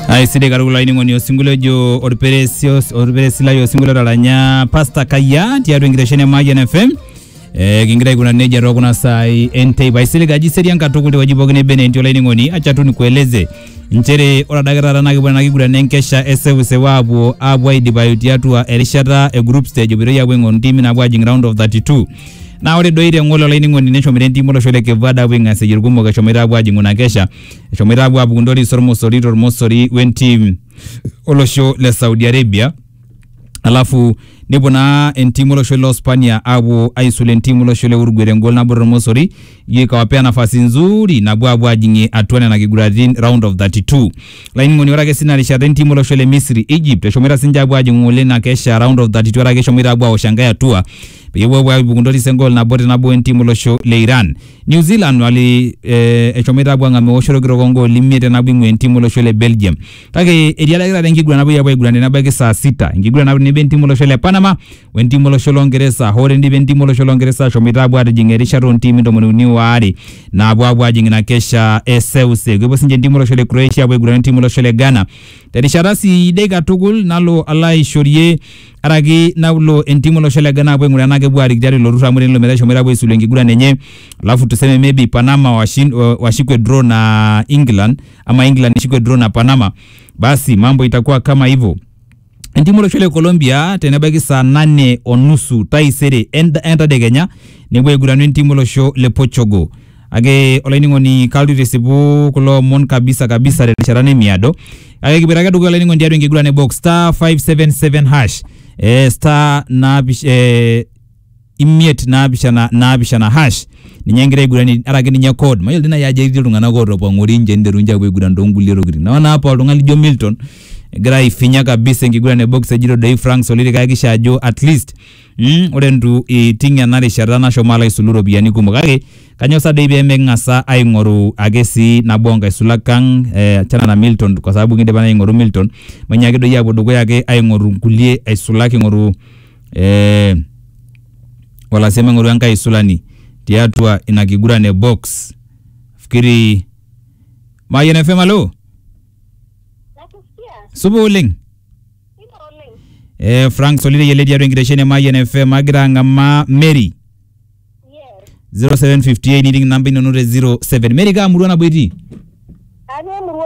aisidai katukul ainining'oni osinkolio ojo orperesi os- orperesi lai osinkolio otaranya pasta kayia tiatua enkitesheni e Mayian FM Eh, kingira aikuna nejia too kuna saai enteipa aisilig aji serian katukul tewueji pookin nebe naa entii olainining'oni acha tu nikueleze nchere ore adake taata naa kipuo ena kiguran enkesha eseuseu aapuo aapuo aidipayu tiatua erishata e group stage epuoitoi aapuo aing'oru ntimi naapuo ajing round of 32 Naa ore doi te ng'ole olainining'oni neshomoita entim olosho le Cape Verde aapuo aing'asieyie irkumok eshomoita aapuo aajing'u ina kesha eshomoita aapuo aapuku ntoris ormosori tormosori wentim olosho le Saudi Arabia alafu nepuo naa entim olosho le Uspania aapuo aisul entim olosho le Uruguay tengol nabo tormosori ijo ikawapea nafasi nzuri napuo aapuo aajing'ie atua nena kiguratin round of 32 lainining'oni ore ake sina rishata entim olosho le Misri Egypt eshomoita sinche aapuo aajing'u ng'ole ina kesha round of 32 ore ake eshomoita aapuo awosh enkae atua peyie epuo aibung ntoris engol nabo te nabo entim olosho le Iran. New Zealand wali eh, eshomoita apuo ang'amu eoshoto orkitok ongooli imiet te nabo ing'ua entim olosho le Belgium. Kake etiadaki taata enkiguran napuoi apuo aiguran tenebaiki saa sita. Enkiguran nabo tenebo entim olosho le Panama wentim olosho lo Ngeresa. Hoo tendipa entim olosho lo Ngeresa ashomoita apuo atijing erishata ontimi ntomoni uni waare naapuo apuo ajing ina kesha e seuseu. Kepuo sinche entim olosho le Croatia apuo aiguran entim olosho le Ghana terishata sidai katukul nalo alo aishorie araki naulo entimu olosho le Ghana apuo aing'uraa enaa kepuo aarik tiatua ilo turrur amu tenelo metaa eshomoita apuo aisulu enkiguran enye alafu tuseme maybe Panama washin, wa- washikwe draw na England ama England ishikwe draw na Panama basi mambo itakuwa kama hivyo entimu olosho le Colombia tenebaiki saa nane o nusu taisere ent- entadekenya nepuo aiguranu entimu olosho le Portugal Ake olainining'oni kalotu aitisipu kulo omon kabisa kabisa terishata nemiado. Ake kipuoita ake dukuya olainining'oni tiatua enkiguran e box star 577 hash eh, star naapish eh, imiet naapishana naapishana hash ninye egira aiguranie ara ake ninye code mayiolo dii naaji ajo etii iltung'anak ootopong'ori nche niteru nche apuo aiguran toonkulie tokitin naa ore apa oltung'ani lijo Milton egira aifinya kabisa enkiguran e box ejito doi Frank Soliri kayakisha ajo at least Mm, ore ntu iting ena rishata nashomo alo aisulu iropiyiani kumok kake kanyo sa doi pemeking'asa aing'oru ake sii nabo onkaisulak ang eh, achana na Milton kwa sababu kindipa naa aing'oru Milton mainyaaki doi apuo dukuya ake aing'oru nkulie aisulak king'oru eh, o lasima aing'oru enkae aisulani tiatua ina kiguran e box fikiri Mayian FM alo Nakusikia. supa oleng eh, frank solire yele tiatua enkitesheni e mayian fm agira ang'amaa mary 0758 niting namba inono te 07 mary kaa murua nabo itii